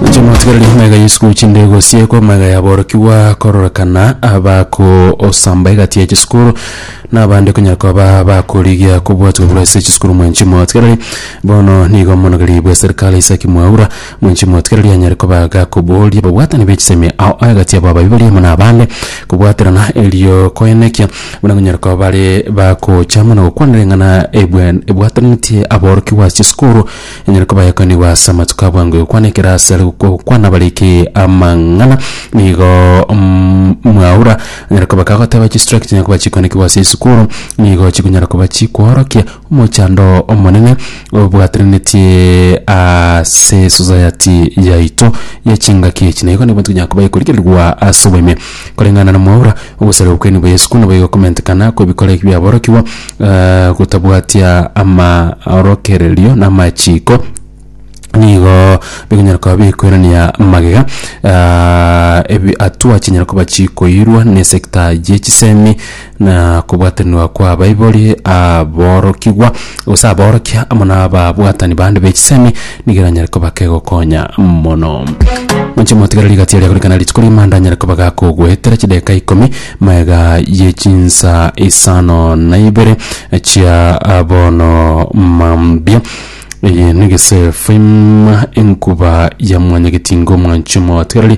Inche mwatigereria omega Yesu gochia ndego sieko omega yaborokigwa kororekana abako osamba egati ya chisukuru na abande konya koba bakorigia kobwatwa buru ase chisukuru mwenchi mwatigereria bono nigo omonogeri bwe serikali Isaac Mwaura mwenchi mwatigereria anyare koba gakoboria babwatani be chisemi ao egati yabo abaibori amo na abande kobwaterana erio koenekia buna konyara koba bare bakocha mono gokwana ring'ana ebwe ebwatanitie aborokigwa ase chisukuru Enyare koba yakoinigwa ase amatuko a bwango egokwana ekero asare gokwa gokwana bariki amang'ana nigo mm, mwaura anyare koba kagoteba chistrike chinyare koba chikoinekigwa ase esukuru nigo chikonyara koba chikworokia omochando omonene obwatananetie ase esosayati yaito ya chingaki echi na igo nigo tonyara koba ekorigererigwa ase oboime. Koreng'ana na mwaura, ogosareka gokwenigwa gwa Yeso konaboigo gokomentekana kw'ebikoro eke biaborokigwa, eh, gotabwatia amaorokererio na amachiiko, nigo bikonyara koba bikwirania magega, ah, ebi- hatua chinyare koba chikoirwa ne sector ye chisemi. na kobwatanigwa kw'abaibori, aborokigwa, gose aborokia amo n'ababwatani bande be chisemi nigo eranyare koba kegokonya mono. Inche motigere rigati eria korikana rituko rigima ndanyare koba gakogoetera chidakika ikomi magega ye chinsa isano na ibere chia bono mambia. Eye negesefu ima enkuba ya mwanyagetingo mwanchwa omotigereri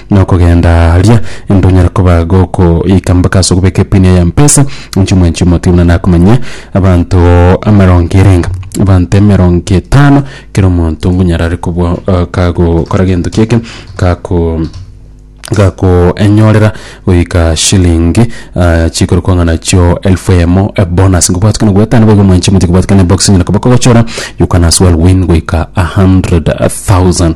Na okogenda aria ntonyare koba gokoika mpaka ase okobeka epini eye yampesa, inche omwenchi omotibe buna nakomanyia abanto emerongo ere enga, abanto emerongo etano, kera omonto ngonyara are kobua kagokora gento kieke gako gakoenyorera goika shilingi chikorokwa ng'a nachio elfu eyemo ebonus. Ngobwati kona goetania boigo omwanchi omotibe kobwati kena ebox enyene koba kogochora you can as well win goika a hundred thousand.